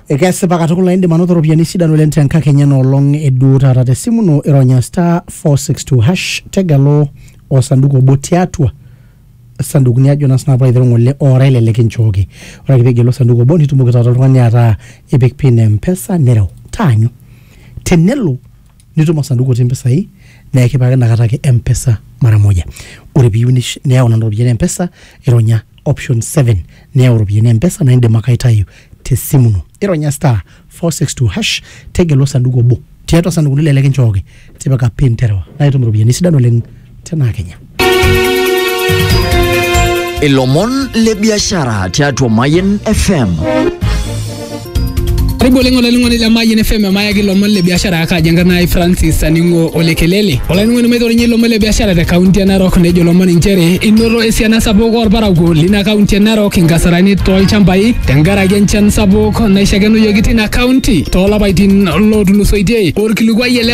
ekesipa katukul naa indim anoto iropiyiani sidan oleng tenkakenya enoolong eduo taata tesimu ino ironya star 462 hash tegelu osanduku obo tiatua sandukuni ajo naa sinanu paiteru ng'ole ora ele likinchooki ore ake pigelu osanduku obo nitumoki taata oltung'ani ataa ipik pin e mpesa nireu taanyu tenelo nitum osanduku otii mpisai naa ekipikaki inakata ake mpesa mara moja ore piyieu nish- niyau nena ropiyiani mpesa ironya option 7 niyau iropiyiani mpesa naa indim ake aitayu tesimu ino ironya star 462 hash tegelu osanduku obo tiatua isandukuno ele likinchooki tipika pin terewa naa itum iropiyiani sidan oleng tenaa kenya ilomon le biashara tiatua Mayen FM. Karibu oleng olainining'oni le Mayian FM emayaki ilomon le biashara akaji enkarna ai Francis Aning'o Olekelele. Olainining'oni maitorinye ilomon le biashara te kaunti e Narok nejo ilomon inchere inoto esiana sapuk orparakuo lina kaunti e Narok inkasarani tolchambai tenkaraki enchan sapuk naishakenuyoki tina kaunti toolapaitin lootulusoitie. Orkilikuai ele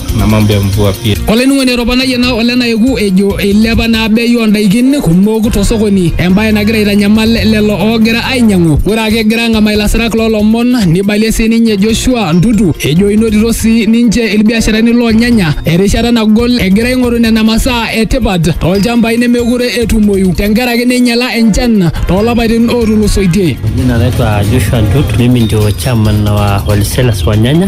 na mambo ya mvua pia. olainining'oni etoponayie naa ole naeku ejo eilepa naa bei oondaikin kumok tosokoni embaye nagira aitanyamal lelo oogira ainyang'u ore ake egira ang'amaa ilasirak loolomon neibalie sii ninye Joshua Ntutu ejo inotito sii ninche ilbiasharani loolnyanya erishata nagol egira aing'oru nena masaa e tipat toolchambai nemeekure etumoyu tenkaraki neinyala enchan toolapaitin ootulusoitie. Jina naitwa Joshua Ntutu, mimi ndio chairman wa wholesalers wa nyanya.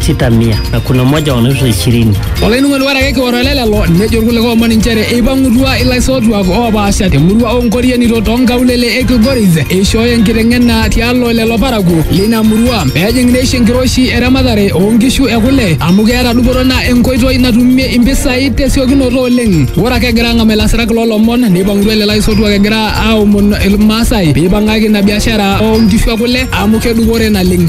sita mia na kuna moja wanaitwa ishirini. Olainung'oni ore ake kioro ele lelo nejo irkulikae omon inchere eipang'utua ilaisotuak oopaasha temurua oonkorienito toonkaulele e Kilgoris eishooyo enkiteng'ena tialo lelo parakuo lina murua peejing neisho enkiroshi eramatare oonkishu ekule amu keeta dupoto naa enkoitoi natumie impisai tesiokinoto oleng. Ore ake egira ang'amu ilasirak loolomon neipang'utua lelo aisotuak egira aomon Ilmaasai peipang'aki ina biashara oonkishu ekule amu kedupore naleng.